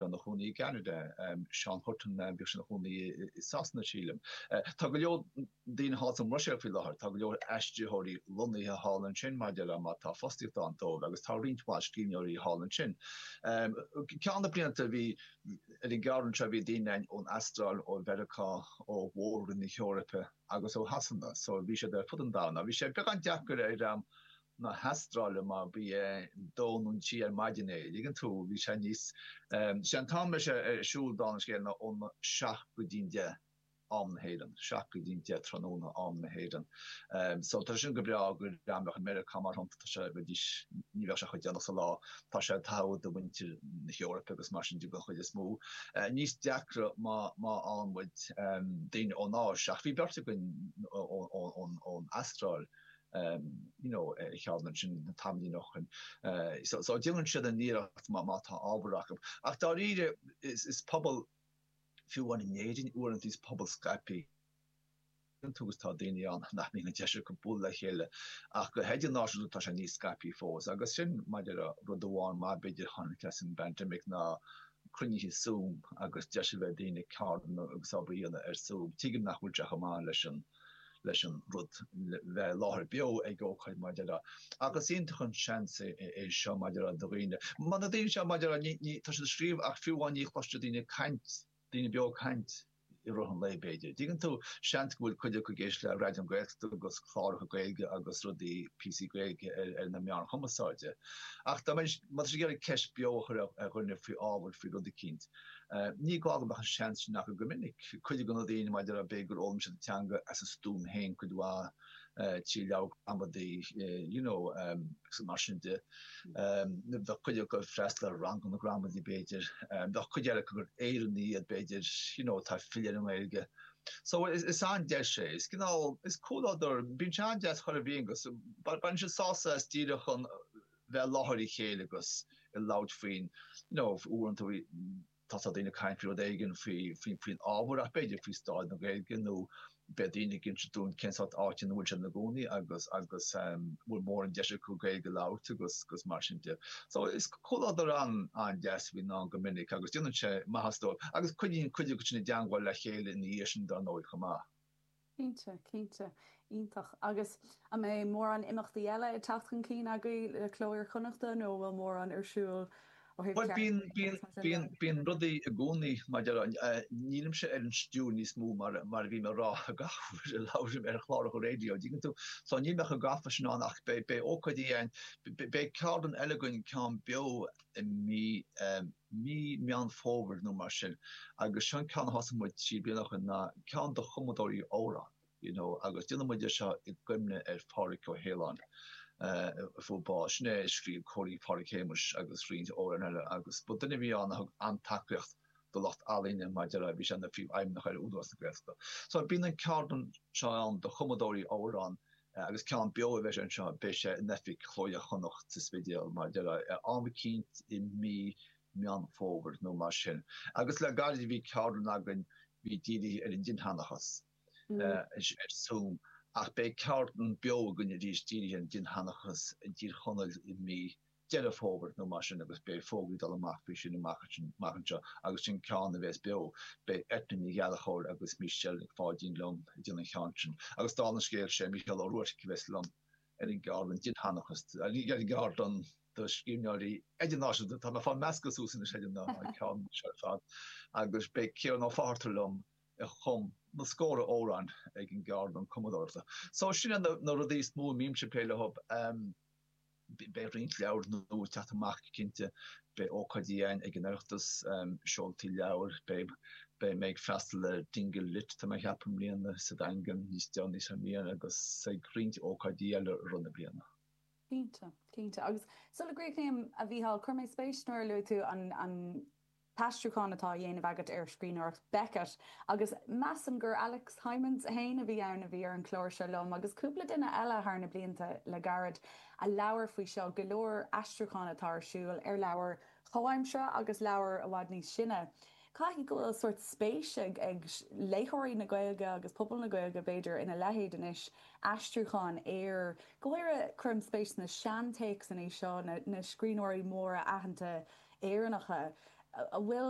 Bhí sé ina chónaí i gCeanada. Seán Hutton, bhí sé ina chónaí i Sasana sílim. Tá go leor daoine thall sa mBruiséil faoi láthair, tá go leor aistritheoirí lonnaithe thall ansin mar a déarfá mar tá fostaíocht ann dóibh agus tá roinnt mhaith scríbhneoirí thall ansin. Ceann de na blianta bhí, ar an gceardlann seo bhí daoine ann ón Astráil, ó Mheiriceá, ó mhór-roinn na hEorpa agus ó Shasana, so bhí siad ar fud an domhain. Bhí sé beagán deacair ar na hAstráile mar ba dhóibh siúd ar maidin é. Dtuigeann tú bhí sé níos sé an t-am bhí sé ar siúl Dán agus Scéal ná ón 7 go dtí'n 10 am na hÉireann 7 go dtí'n 10 tráthnóna am na hÉireann. So tá sin go breá go deimhneach i Meiriceá mar tá sé bheidís ní bheadh sé chomh déanach sa lá. Tá sé togha do mhuintir na hEorpa agus mar sin de don chuid is mó. Níos deacra má má bhíonn daoine ón Áis ach bhí beirt againn ón ón ón Astráil. you know, a cheann ansin na tamaillí nach chun so so déanann siad a n-iarracht má má tá ábhar acu. Ach dáiríre is is pobal fiú amháin in Éirinn uaireanta is pobal scaipthe muid agus tá daoine ann nach mbíonn an deis acu bualadh le chéile ach go hidirnáisiúnta tá sé níos scaipthe fós agus sin mar a déarfá rud amháin maith b'fhéidir a tháinig as an bpaindéim ná cruinnithe Zoom agus deis a bheith ag daoine ceardlanna agus obair a dhéanamh ar Zoom. Tuigim nach bhfuil sé chomh maith leis an leis an rud bheith i láthair beo ag ócáid mar a déarfá agus is iontach an seans é seo mar a déarfá do dhaoine. Mar na daoine seo mar a déarfá ní tá siad ag scríobh ach fiú amháin ní chloiseann siad daoine ag caint, daoine beo ag caint i rith an lae b'fhéidir. Dtuigeann tú, seans go bhfuil cuid acu ag éisteacht le Raidió na Gaeltachta agus cláracha Gaeilge agus rudaí píosaí Gaeilge ar na meáin chumasáide. Ach dá mbeidh, má tá siad ag iarraidh ceist beo a chur ar dhuine faoi ábhar, faoi rud eicínt, Ní gá go mbeadh an seans sin acu go minic. Cuid de na daoine, mar a déarfá b'fhéidir, gur fhoghlaim siad an teanga as a stuaim féin cuid mhaith, trí leabhair gramadaí, you know, agus mar sin de. Bheadh cuid acu ag freastal ar ranganna gramadaí, b'fhéidir. Bheadh cuid eile acu gur Éireannaigh iad, b'fhéidir, you know, atá ag filleadh ar an nGaeilge. So, is an-deis é. Is cineál, is comhluadar, bíonn sé an-deas agus bíonn, baineann siad sásamh as díreach an, bheith i láthair a chéile agus ag labhairt faoin, you know, uaireanta tá tá daoine ag caint faoi rud éigin faoi faoi faoin ábhar ach b'fhéidir faoi stáid na Gaeilge nó beidh daoine ag inse dúinn cén sórt áite ina bhfuil siad ina gcónaí agus agus um bhfuil mórán deis acu Gaeilge a labhairt agus agus mar sin de. So is comhluadar an an deas a bhíonn ann go minic agus déanann sé maitheas dóibh agus coinníonn cuid acu sin i dteangmháil le chéile ina dhiaidh sin dar ndóigh chomh maith. Cinnte, cinnte. Iontach. Agus an mbeidh mórán imeachtaí eile ag teacht chun cinn agaibh le Cló Iar-Chonnacht nó an bhfuil mórán ar siúl ó thaobh Bhuel, bíonn, ceardlann agus mar sin de? bíonn, bíonn rudaí i gcónaí mar a déarfá, nílimse ar an stiúir níos mó mar, mar a bhím ag rá gach uair a labhraím ar chláracha raidió, an dtuigeann tú? So níl mé chomh gafa sin ann ach beidh, beidh ócáidí ann, beidh ceardlann eile againn, ceann beo i mí, eh, mí Meán Fómhair nó mar sin agus seo an ceann a thosaigh muid trí bliana ó shin ná ceann do chumadóirí amhrán you know agus déanann muid é seo i gcuimhne ar Phádhraic Ó hAoláin a fuair bás. Sin é a scríobh Cóilín Phádraig Shéamuis agus roinnt amhrán eile agus ba duine a bhí ann a thug an-tacaíocht do lucht ealaíne mar a déarfá bhí sé ina phríomhfheidhmeannach ar Údarás na Gaeltachta. So bíonn an cheardlann seo ann do chumadóirí amhrán Agus ceann beo a bheas anseo, beidh sé in oifig Chló Iar-Chonnacht sa Spidéal, mar a déarfá, ar am eicínt i mí Meán Fómhair nó mar sin. Agus le gairid bhí ceardlann againn bhí dírithe ar an dinnsheanchas ar zoom ach beidh ceardlann beo againn arís dírithe ar an dinnsheanchas i dTír Chonaill i mí Deireadh Fómhair nó mar sin agus beidh fógraí ag dul amach faoi sin amach anseo agus sin ceann a bhéas beo. Beidh Eithne Ní Ghallchobhair agus Michelle Nic Pháidín liom ag déanamh an chinn sin agus dála an scéil sé Mícheál Ó Ruairc a bhéas liom ar an gceardlann dinnsheanchas ar an gceardlann do scríbhneoirí idirnáisiúnta. Tá mé ag fáil meascadh suas anois ar an ceann seo ar fad agus beidh Ciarán Ó Fátharta liom a chum na scór amhráin ag an gceardlann cumadóireachta. So sin na rudaí is mó a mbímse ag plé leo. Beidh roinnt leabhair nua ag teacht amach cinnte. Beidh ócáidí ann ag an Oireachtas, seoltaí leabhair, beidh mé ag freastal ar Dingle Lit tá mé ag ceapadh i mbliana, sa Daingean níos déanaí sa mbliain agus ag roinnt ócáidí eile i rith na bliana. Cinnte, cinnte. Agus sula gcríochnaím, a Mhícheáil, chuir mé spéis nuair a luaigh tú an t-aistriúchán atá á dhéanamh agat ar scríbhneoireacht Beckett agus measaim gur Alex Hijmans féin a bhí ann a bhí ar an gclár seo liom agus cúpla duine eile thar na blianta le gairid a labhair faoi seo, go leor aistriúchán atá ar siúl ar leabhair chomhaimseartha agus leabhair i bhfad níos sine. Caithfidh go bhfuil sórt spéis ag léitheoirí na Gaeilge agus pobal na Gaeilge b'fhéidir ina leithéid anois, aistriúchán ar. Go háirithe, cuirim spéis sna seantéacsanna seo, na scríbhneoirí móra aitheanta Éireannacha a bhfuil.